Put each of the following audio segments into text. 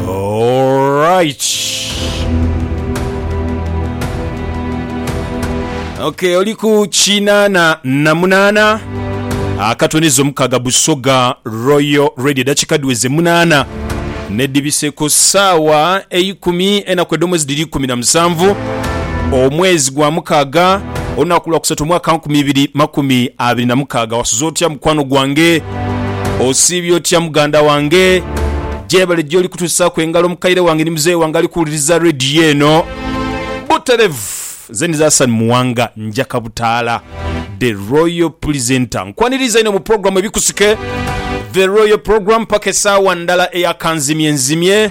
Alright. Okay, oli ku kinaana na munaana akatoneza omukaga Busoga Royal Radio dakika dhiweze munaana nedhibise ku saawa eikumi enaku edhomwezi dhiri ikumi na musanvu omwezi gwa mukaga olunaku lwa kusatu omwaka nkumi ibiri makumi abiri na mukaga wasuza otya mukwano gwange Osiibye otya muganda wange? Gyebale gy'oli kutusaaku engalo mukaire wange ni muzeeyi wange ali kuwuliriza leediyo eno buterevu. Nze ndi Hassan Muwanga Njaka Butaala, The Royal Presenter. Nkwaniriza inho mu pulogulaamu Ebikusike, The Royal Program, paka esaawa ndala eya kanzimyenzimye.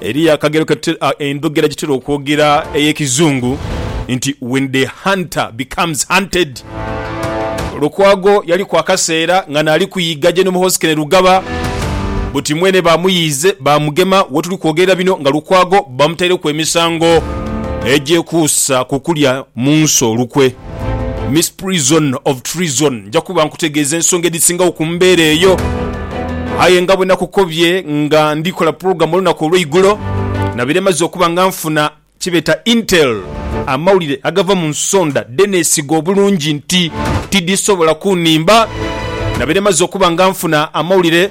Eriyo akagero endhogera gye tutera okwogera ey'Ekizungu nti when the hunter becomes hunted. Lukwago yaliku akaseera nga naali kuyiga General Hoskene Lugaba buti mwene baamuyiize baamugema. We tuli kwogerera bino nga Lukwago bamutaireku emisango egyekuusa ku kulya mu nsi olukwe. Misprision of treason. Nja kuba nkutegeeza ensonga edhisingagho ku mbeera eyo. Aye nga bwe nakukobye nga ndikola pulogulamu olunaku olweigulo, nabaire maze okuba nga nfuna kyebeeta intel, amawulire agava mu nsonda dhe neesiga obulungi nti tidhisobola kunhimba. Nabaire maze okuba nga nfuna amawulire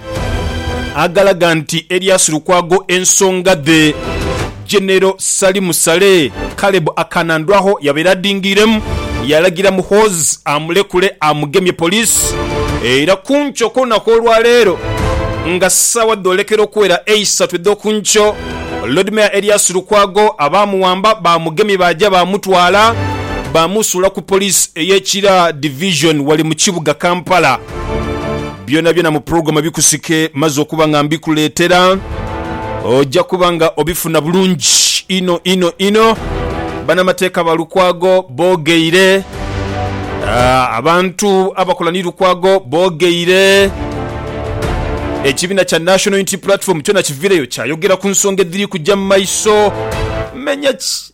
agalaga nti eryasu Lukwago ensonga dhe. Genero Salim Saleh, Caleb Akanandwagho yabaire adhingiiremu, yalagira Muhoozi amulekule amugemye poliisi era ku nkyo kw'olunaku olwaleero nga saawa dhoolekera okuwera eisatu edh'oku nkyo, Lord Mayor Erias Lukwago abaamuwamba baamugemye baaja baamutwala baamusuula ku poliisi ey'e Kira Division wali mu kibuga Kampala. Byonabyona mu program ebikusike maze okuba nga mbikuleetera oja kuba nga obifuna bulungi inho inho inho. Banamateeka ba Lukwago boogeire, ah, abantu abakola ni Lukwago boogeire, ekibiina kya National Unity Platform kyona kivireyo kyayogera ku nsonga edhiri kuja mu maiso. Menya ki?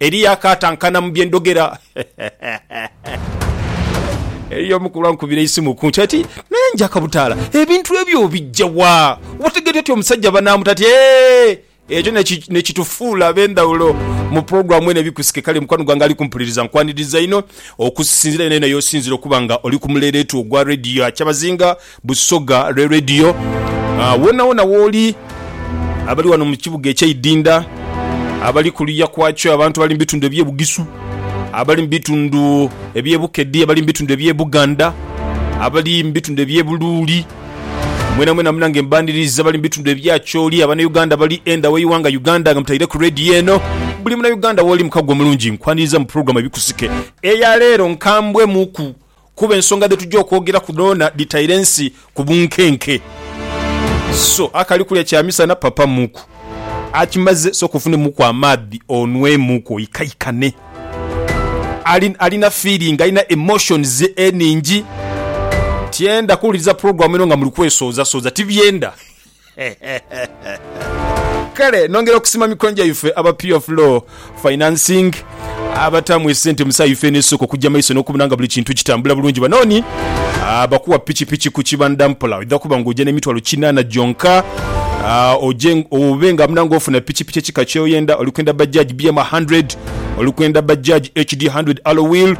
Eriyo akaatankana mu bye ndhogera. Eriyo omukulu ankubira eisimu ku nkyo ati, Naye Njakabutaala, ebintu ebyo obija wa? Otegeera otya omusajja banaamuta? Ati, Eeh! Ekyo ni kitufuula ab'endhawulo mu pulogulaamu eno ebikusike. Kale mukwano gwange ali kumpuliriza, nkwaniriza inho okusinziira yenayena y'osinziire okuba nga oli ku muleeleetu ogwa leediyo ya kyabazinga. Busoga lwe Radio. Wonawona wooli, abali wano mu kibuga ekye Idinda, abali kuluya kwakyo, abantu abali mu bitundu ebye Bugisu, abali mu bitundu ebye Bukedi, abali mu bitundu ebye Buganda, abali mu bitundu ebye Buluuli, mwena mwena munange mbaniriza, abali mu bitundu ebye Acholi, abana Uganda abali enda we iwanga Uganda nga mutaire ku Radio eno, buli muna Uganda wooli mukago omulungi nkwaniriza mu program Ebikusike eya leero nkambwe muku Kuba ensonga dhe tuja okwogeraku dhoona dhitaire ensi ku bunkenke. So akali kulya kya misana papa muku. Akimaze sooka ofunemuku amaadhi onwemuku oikaikane. Ali, alina feeling, alina emotions enhingi. Tyenda kuwuliriza program eno nga muli kwesooza sooza. Tibyenda. Kale nongera okusima mikono gyaife aba Pure Flow Financing abataamu esente mu saha ife n'esooka okujja maiso n'okubona nga buli kintu kitambula bulungi. Bano ni abakuwa pikipiki ku kibanda mpola oidha kuba ng'oja n'emitwalo kinaana gyonka oje obe nga muna ng'ofuna pikipiki ekika ky'oyenda. Oli kwenda Bajaj BM 100, oli kwenda Bajaj HD 100 Alloy Wheel,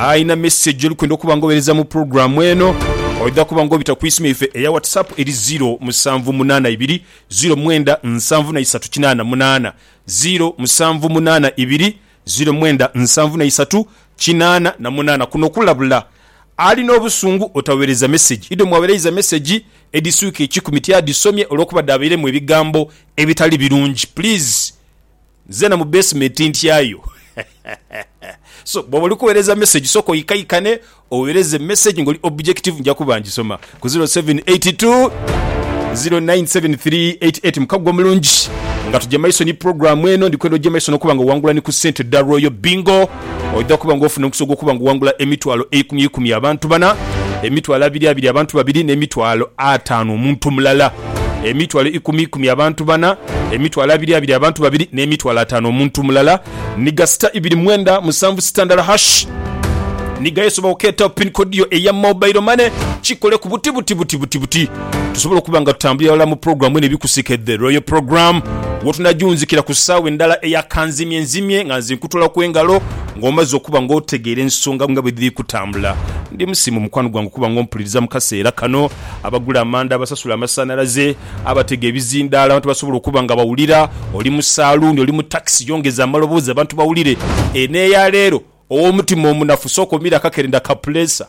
Alina message gyolikwenda okuba nga owereza mu program eno oidha kuba nga obita ku isimu yaife eya WhatsApp eri ziro musanvu munana ibiri ziro mwenda nsanvu na isatu kinana munana, ziro musanvu munana ibiri ziro mwenda nsanvu na isatu kinana na munana. Kuno okulabula alina obusungu otawereza message idho mwawereiza message edhiswika ekikumi tiyadhisomye olwokuba dhabeiremu ebigambo ebitali birungi please. Nzena mu basement ntyayo so bwoba oli kuwereza message soka oikaikane owereze message nga oli objective nja kuba njisoma ku 0782097388 mukago omulungi nga tugya maiso ni program eno ndikwenda ogye maiso nokuba nga owangula ni ku sente dha royal bingo. Oidha kuba nga ofuna omukisa ogw'okuba nga owangula emitwalo eikumi eikumi abantu bana, emitwalo abiri abiri abantu babiri, n'emitwalo ataanu omuntu mulala. Emitwalo ikumi ikumi abantu bana, emitwalo abiri abiri abantu babiri, n'emitwalo ataanu omuntu mulala. Ni ga sita ibiri mwenda musanvu sita ndala hash. Ni ga esobola okeeta pin kodi yo eya mobailo mane kikole ku buti buti buti buti buti. tusobola okuba nga tutambulira ghalala mu pulogulaamu eno ebikusike The Royal Program wotunajunzikira ku ssaawa endala eya kanzimye nzimye nga nze nkutolaku engalo nga omaze okuba nga otegeera ensonga nga bwe dhiri kutambula. Ndi musiimu mukwano gwange okuba nga ompuliriza mu kaseera kano. Abagula amanda, abasasula amasanhalaze, abatega ebizindaalo, abantu basobola okuba nga bawulira, oli mu saaluuni, oli mu takisi yongeza amaloboozi abantu bawulire. Eno eya leero, ow'omutima omunafu sooka omiire akakerenda ka puleesa.